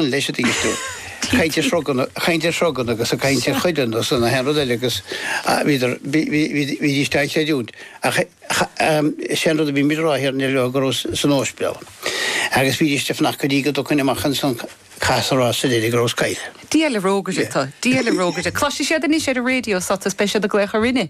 leis an dtíosú, ag caint ar shrugan, ag caint ar shrugan agus ag caint ar chuireann agus an aon rud eile agus bhíodar, bhídís dá chreidiúint ach is é an rud a bhímid a rá thiar, níor leor go rabhas san óspidéal agus bhídís ag fanacht go dtí go dtagainn amach ins an cas a rá sa deiridh go rabhas caillte. Diabhal rógaire tu, diabhal rógaire. Cloisfidh siad anois ar an raidió tu is beidh siad ag glaoch orainne.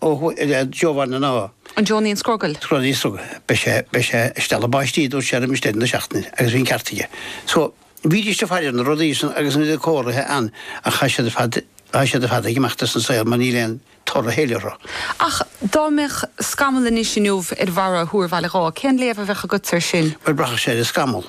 Oho i leith Giovanna na. An deonaíonn scrogall? Scrogall níos rugga. Beidh sé, beidh sé ag stealladh báistí a dúirt sé roimis deireadh na seachtaine agus bhí an ceart aige. So, bhídís ag faire ar na rudaí san agus bhí na comharthaí ann ach tá siad ar fad, tá siad ar fad ag imeacht as an saol mar níl aon toradh á thabhairt orthu. Ach dá mbeadh scamall anois inniu ar bharra Thúr Bhaile Dháith, cén léamh a bheadh agatsa ar sin? Bhuel, braithfeadh sé ar an scamall.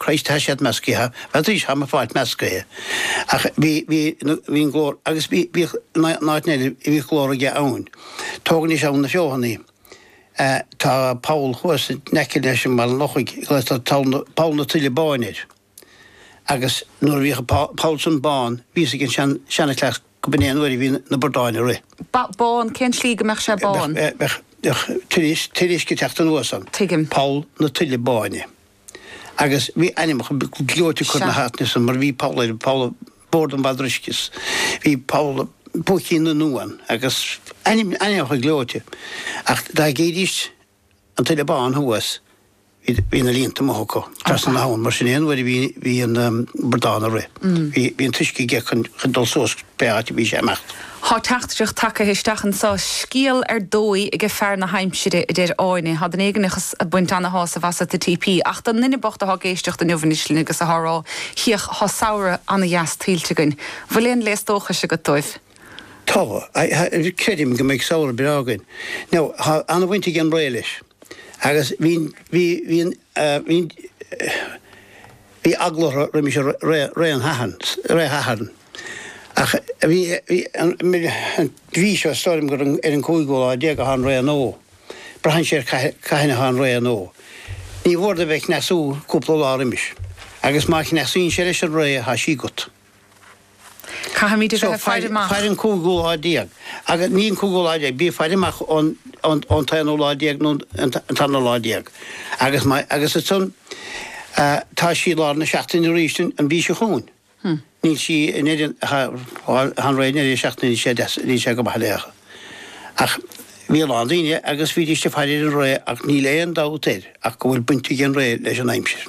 Christ tá siad meascaithe, that is tá mo pháirt meascaithe ach bhí, bhí, bhí an glór, agus bhí, bhíodh in áiteanna eile bhíodh glór aige ann. Tógainís ann na feothanaí. Eh tá poll thuas in aice leis an Bhaile an Lochaigh a glaotar poll na, poll na Tuile Báine air agus nuair a bhíodh an poll, poll san bán bhí a fhios ag an sean, seanchleas go mb'in é an uair a bhí na bradáin ag rith. Ba, bán, cén tslí go mbeadh sé Bheadh, bán? eh bheadh, bheadh tuile, tuile uisce ag teacht anuas ann. Tuigim. Poll na Tuile Báine. agus bhí ainmneacha gleoite curtha ar na háiteanna san, mar bhí poll ar pholl Bhord an Bhadroichis, bhí poll Púicín na nUan agus ainmneacha gleoite. Ach dá gcídís an tuile bán thuas, bhí na líonta amuigh acu, trasna na habhann, mar sin é an uair a bhí an bradán ag rith, bhí an t-uisce aige chun dul suas pé áit a bhí sé ag imeacht. Thá teachtaireacht tagtha isteach anso, scéal ar dóigh aige fear na haimsire, a deir Áine. Thá duine éigineach a' baint ana-shásamh asat, a TP, ach don nduine bocht athá ag éisteacht inniubh anois linn agus athá rá, hiach, thá samhradh ana-dheas tuillte againn. 'Bhfuil aon léas dóchais agat dóibh? Thá. Creidim go mbeidh samhradh breá againn. Now, thá ana-bhaint ag an ré leis. Agus bhíonn, bhí, bhíonn, bhíonn, Bhí eagla orthu roimis ré an tSathairn ach bhí an mhí seo is dóigh liom gur ar an 15ú lá atá an ré nua. Braitheann sé ar cathain atá an ré nua. Níor mhór dó bheith ag cneasú cúpla lá roimis agus má chneasaíonn sé leis an ré tá sí agat. Caithfimid a bheith ag faire amach. Faigh an cúigiú lá déag, agus ní an cúigiú lá déag, bí ag faire amach ón t-aonú lá déag nó an tarna lá déag. Agus má, agus ansan, tá sí i lár na seachtaine arís an mhí seo chugainn. Níl sí in Éirinn ach an ré i ndeireadh seachtaine níl sé deas, níl sé go maith léi. Ach bhí a lán daoine agus bhídís ag faire ar an ré ach níl aon dabht air ach go bhfuil baint ag an ré leis an aimsir.